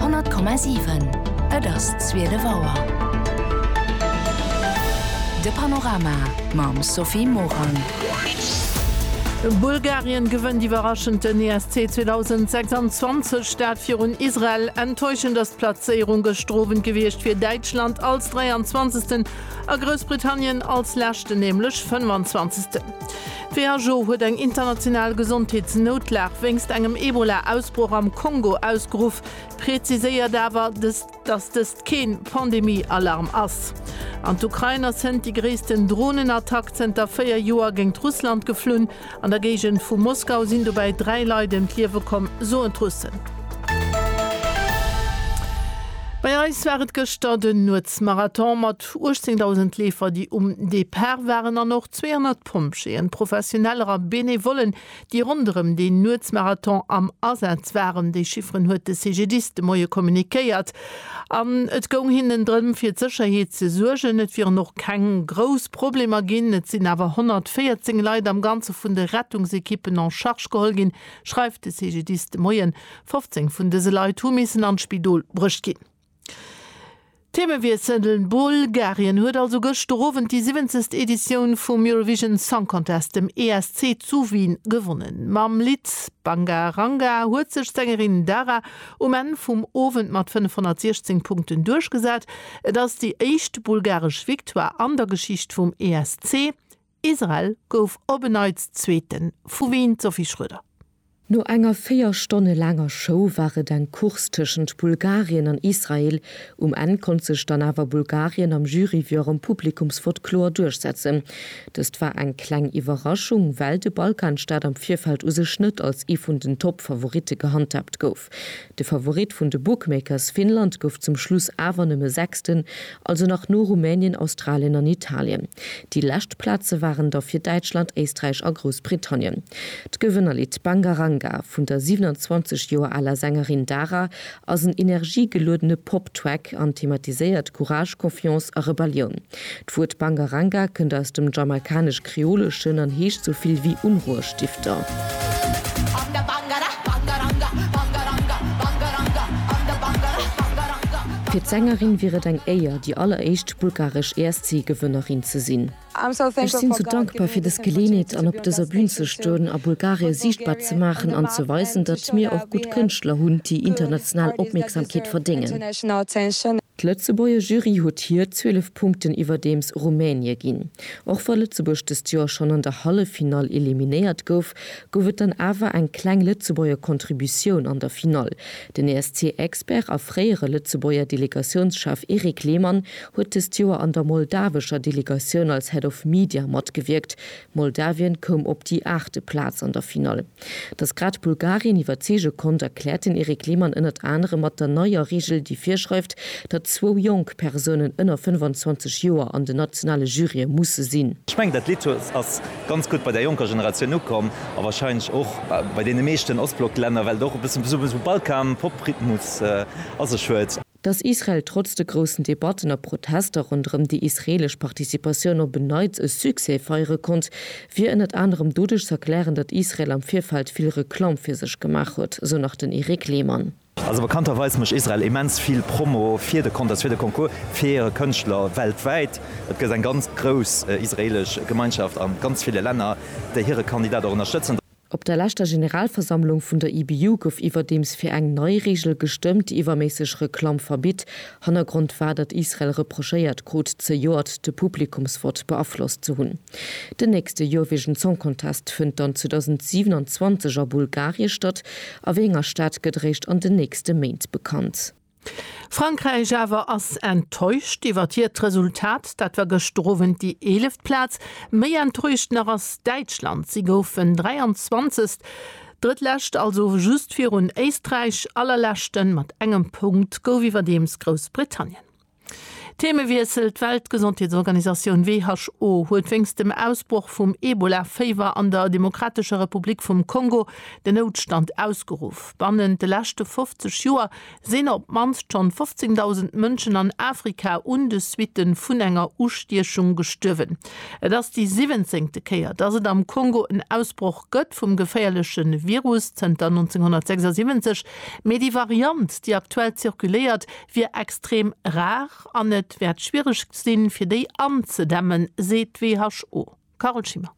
100,7 Et ass zwielef Auer. De Panorama mam Sophie Morang. Bulgarien gewënnt iwwerraschend den ESC 2026, dat virun Israel. Enttäuschend ass d'Plazéierung gëschter Owend gewiescht fir Däitschland als 23. a Groussbritannien als leschten, nämlech 25. D'WHO huet eng international Gesondheetsnoutlag wéinst engem Ebola-Ausbroch am Kongo ausgeruff, präziséiert awer, datt dëst kee Pandemie-Alarm ass. An d'Ukrain ass hënt déi gréissten Dronenattack zënter 4 Joer géingt Russland geflunn. An der Géigend vu Moskau sinn dobäi 3 Leit ëm d'Liewe komm, soen d'Russen. Bei eis war et gëschter den Nuetsmarathon mat 18.000 Leefer, déi um Depart waren an och 200. Pompjeeën, Professioneller a Benevollen, déi ronderëm deen Nuetsmarathon am Asaz waren. Déi Chifferen huet de CGDIS de Moie kommunikéiert. An et goung hinnen drëm, fir d'Sécherheet ze suergen. Et wieren och keng grouss Problemer ginn. Et sinn awer 114 Leit am Ganze vun de Rettungsekippen en charge geholl ginn, schreift de CGDIS de Moien. 15 vun dëse Leit hu missen an d'Spidol bruecht ginn. Themewiessel, Bulgarien huet also gëschter Owend déi siwwenzegst Editioun vum Eurovision Song Contest, dem ESC, zu Wien gewonnen. Mam Lidd Banga Ranga huet sech d'Sängerin Dara um Enn vum Owend mat 516 Punkten duerchgesat. Et ass déi éischt bulgaresch Victoire an der Geschicht vum ESC. Israel gouf op en Neits Zweeten, vu Wien d'Sophie Schroeder. No enger 4 Stonne laanger Show war et eng Course tëschent Bulgarien an Israel. Um Enn konnt sech dann awer Bulgarien am Jury wéi och am Publikumsvott kloer duerchsetzen. Dëst war eng kleng Iwwerraschung, well de Balkanstaat am Virfeld u sech net als ee vun den Top-Favoritte gehandhaabt gouf. De Favorit vun de Bookmakers Finnland gouf zum Schluss awer nëmme Sechsten, also nach no Rumänien, Australien an Italien. Déi lescht Plaze waren da fir Däitschland, Éisträich a Groussbritannien. D'Gewënnerlidd Banga Ranga vun der 27 Joer aler Sängerin Dara ass en energiegeluedene Pop-Track an thematiséiert Courage, Confiance a Rebellioun. D'Wuert Bangaranga kënnt aus dem Jamaikanesch-Kreoleschen an heescht sou vill wéi Unruhestifter. Fir d'Sängerin wier et eng Éier, déi alleréischt bulgaresch ESC-Gewënnerin ze sinn. Ech sinn sou dankbar fir dës Geleenheet an op dëser Bün ze stoen a Bulgarie siichtbar ze maachen an ze weisen, datt mir och gutt Kënschtler hunn, déi international Opmierksamkeet verdéngen. D'Lëtzebuerger Jury huet hir 12 Punkten iwwerdeems Rumänie ginn. Och wa Lëtzebuerg dëst Joer schonn an der Halleffinall eliminéiert gouf, gouf et dann awer eng kleng Lëtzebuerger Contributioun an der Finall. Den ESC-Expert a fréiere Lëtzebuerger Delegatiounschef Erik Lehmann huet dëst Joer an der moldawescher Delegatioun als Head of Media matgewierkt, Moldawien koum op déi aachte Plaz an der Finall. Datt grad Bulgarien iwwerzeege konnt, erkläert den Eric Lehmann ënnert anerem mat der neier Reegel, déi virschreift, datt zwou jonk Persounen ënner 25 Joer an den nationale Jurye musse sinn. Ech mengen, dat Lidd ass ganz gutt bei der jonker Generatioun ukomm a warscheinlech och bei deene meeschten Ostblock-Länner, well et och e bëssen esou Balkan-Pop-Rhythmus a sech huet. Datt Israel trotz de groussen Debatten a Protester ronderëm déi israeelesch Participatioun op en Neits e Succès feiere konnt, wier ënnert anerem doduerch z'erklären, datt Israel am Virfeld vill Reklamm fir sech gemaach huet, sou nach den Eric Lehmann. Also bekannterweis mécht Israel immens vill Promo fir de Contest, fir de Concours, fir hire Kënschtler weltwäit. Et gëtt eng ganz grouss israeelesch Gemeinschaft a ganz ville Länner, déi hire Kandidat och ënnerstëtzen. Op der leschter Generalversammlung vun der IBU gouf iwwerdeems fir eng nei Reegel gestëmmt, déi iwwerméisseg Reklamm verbitt. Hannergrond war, datt Israel reprochéiert krut, zejoert de Publikumsvott beaflosst ze hunn. Den nächste Eurovision Song Contest fënnt dann 2027 a Bulgarie statt. A wéi enger Stad gëtt eréischt an den nächste Méint bekannt. Frankräich awer ass enttäuscht iwwert hiert Resultat. Dat war gëschter Owend déi eeleft Plaz. Méi enttäuscht nach ass Däitschland. Si goufen 23. Drëttlescht, also just virun Éisträich. Allerleschten, mat engem Punkt, gouf iwwerdeems Groussbritannien. Theemewiessel, D'Weltgesondheetsorganisatioun, who, huet wéinst dem Ausbroch vum Ebola-Féiwer an der Demokratescher Republik vum Kongo den Noutstand ausgeruff. Bannent de leschte 50 Joer sinn op d'mannst schonn 15.000 Mënschen an Afrika un de Suitte vun enger Ustiechung gestuerwen. Et ass déi siwwenzéngte Kéier, datt et am Kongo en Ausbroch gëtt vum geféierleche Virus zënter 1976, mee déi Variant, déi aktuell zirkuléiert, wier extrem rar an et wäert schwiereg sinn, fir déi anzedämmen, seet d'WHO. Carole Schimmer.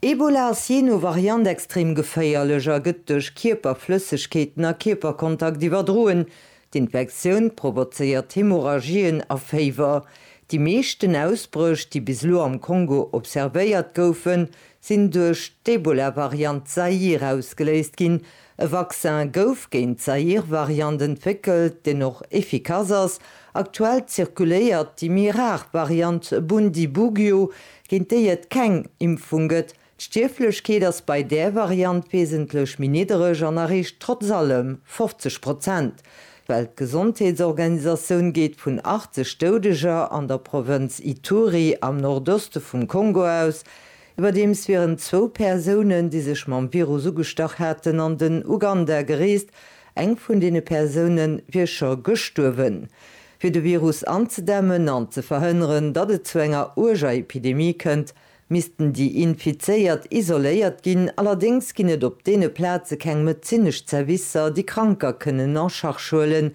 Ebola ass jee no Variant extrem geféierlech a gëtt duerch Kierperflëssegkeeten a Kierperkontakt iwwerdroen. D'Infektioun provozéiert Hemorrhagien a Féiwer. Déi meeschten Ausbréch, déi bis elo am Kongo observéiert goufen, sinn duerch d'Ebola-Variant Zaïre ausgeléist ginn, E Vaccin gouf géint d'Zaïr-Variant entwéckelt, deen och effikass ass. Aktuell zirkuléiert déi méi rar Variant Bundibugyo, géint déi et keng Impfung gëtt. D'Stierflechkeet ass bei där Variant wesentlech méi niddereg an erreecht trotz allem 50 Prozent. D'Weltgesondheetsorganisatioun geet vun 80 Doudeger an der Provënz Ituri am Nordoste vum Kongo aus, Iwwerdeems wieren zwou Persounen, déi sech mam Virus ugestach haten, an den Uganda gereest. Eng vun deene Persoune wier scho gestuerwen. Fir de Virus anzedämmen an ze verhënneren, datt et zu enger uerger Epidemie kënnt, missten déi Infizéiert isoléiert ginn. Allerdéngs ginn et op deene Plaze keng medezinesch Zerwisser, déi Kranker kënnen en charge huelen,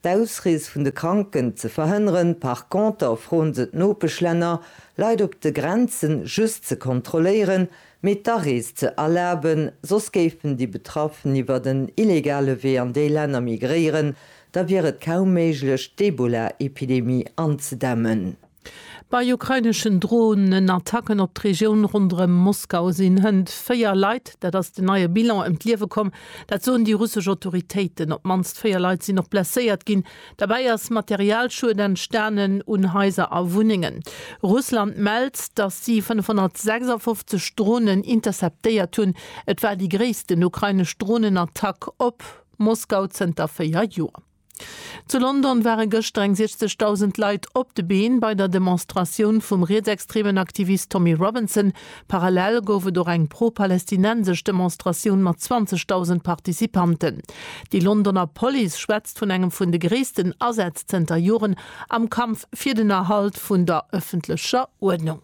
D'Ausrees vun de Kranken ze verhënneren. Par conter froen se d'Nopeschlänner, Leit op de Grenzen just ze kontrolléieren, mee d'Arees ze erlaben, soss géifen déi Betraffen iwwert en illegale Wee an déi Länner migréieren, da wier et kaum méiglech d'Ebola-Epidemie anzedämmen. Bei ukraineschen Dronenattacken op d'Regioun ronderëm Moskau sinn hënt véier Leit, dat ass den neie Bilan, ëm d'Liewe komm. Dat soen déi russesch Autoritéiten. Op d'mannst véier Leit sinn och blesséiert ginn. Derbäi ass Materialschued entstanen un Haiser a Wunnengen. Russland mellt, datt si 556 Dronen interceptéiert hunn. Et war déi gréissten ukrainesch Dronenattack op Moskau zënter véier Joer. Zu London ware gëschter eng 60.000 Leit op de Been bei der Demonstratioun vum rietsextremen Aktivist Tommy Robinson. Parallel gouf et och eng pro-palestinensesch Demonstratioun mat 20.000 Participanten. Déi Londoner Police schwätzt vun engem vun de gréissten Asätz zënter Joren am Kampf fir den Erhalt vun der ëffentlecher Uerdnung.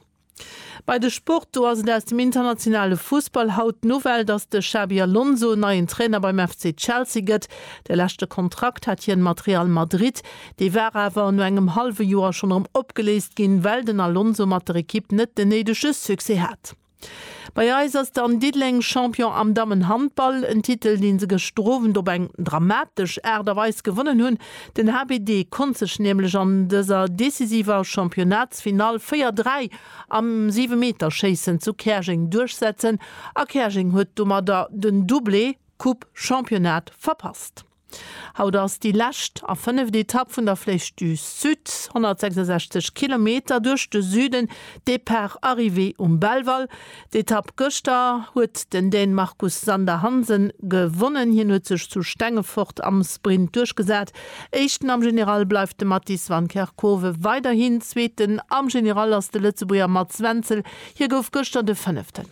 Bei de Sport, do ass et aus dem internationale Fussball haut d'Nouvelle, dass de Xabi Alonso neien Trainer beim FC Chelsea gëtt. De leschte Kontrakt hat hien mat Real Madrid, dee war awer no engem hallwe Joer schonn erëm opgeléist ginn, well den Alonso mat der Ekipp net den néidege Succès hat. Bei eis ass dann Diddeleng Champion am Dammenhandball, en Titel, dee se gëschter Owend op eng dramatesch Aart a Weis gewonnen hunn. Den HBD konnt sech nämlech an dëser decisiver Championnatsfinall 4, 3 am Siwemeterschéissen zu Käerjeng duerchsetzen a Käerjeng huet domadder den Doublé Coupe Championnat verpasst. Haut ass déi lescht a fënneft Etapp vun der Flèche du Sud, 166 Kilometer duerch de Süden, Depart-Arrivée um Belval. D'Etapp gëschter huet den Dän Marcus Sander Hansen gewonnen. Hien huet sech zu Stengefort am Sprint duerchgesat. Éischten am General bleift de Mattis van Kerkhove weiderhin. Zweeten am General ass de Lëtzebuerger Mats Wenzel. Hie gouf gëschter de Fënneften.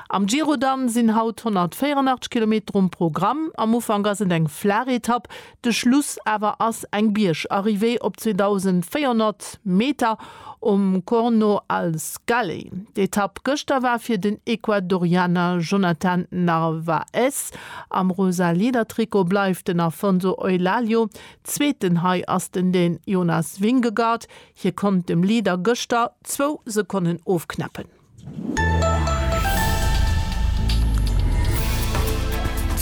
Am Giro dann sinn haut 184 Kilometer um Programm. Am Ufank ass et eng flaach Etapp. De Schluss awer ass eng Biergarrivée op 2.400 Meter um Corno al Scaley. D'Etapp gëschter war fir den Ecuadorianer Jonathan Narvaez. Am rosa Leader-Trikot bleift den Afonso Eulaglio Zweeten. Hei ass den den Jonas Vingegaard. Hie konnt dem Leader gëschter zwou Sekonnen ofknäppen.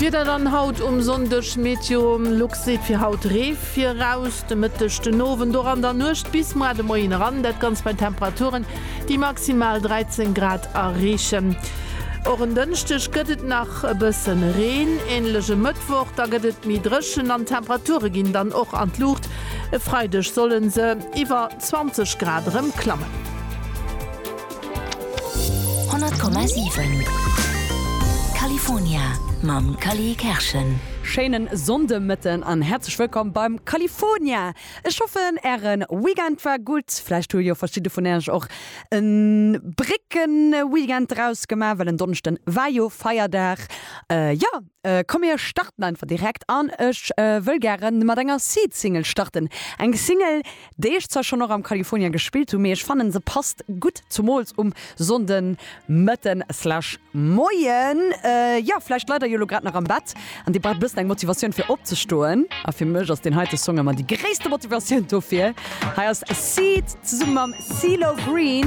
D'Wieder dann haut um Sonndeg, MeteoLux seet fir haut Ree viraus, de Mëtteg, den Owend och an der Nuecht bis muer de Moien eran, dat Ganzt bei Temperaturen, déi maximal 13 Grad erreechen. Och en Dënschdeg gëtt et nach e bësse Reen, änlech e Mëttwoch, da gëtt et méi dréchen an d'Temperature ginn dann och an d'Luucht, e Freideg solle se iwwer 20 Grad erëm klammen. 100,7 California mam Cally Kerschen. Schéinen Sonndemëtten an häerzlech wëllkomm beim California! Ech hoffen ären Weekend war gutt. Vläicht hu jo verschidde vun äech och en Bréckenweekend draus gemaach, well en Donnëschden war jo Feierdag. Jo, Komm mir starten einfach direkt an ech wëll gären mat enger Seed Single starten. Eng Single déi ech zwar schonn och am California gespillt hunn, mee ech fannen se passt gutt zumools um Sonnden Mëtten slash Moien. Jo vläicht leit der jo elo grad nach am Bett an dir braucht bëssen eng Motivatioun fir opzestoen a fir mech ass deen heite Song ëmmer déi gréisste Motivatioun dofir. Hei ass Seed zesummen mam Cee-Lo Green.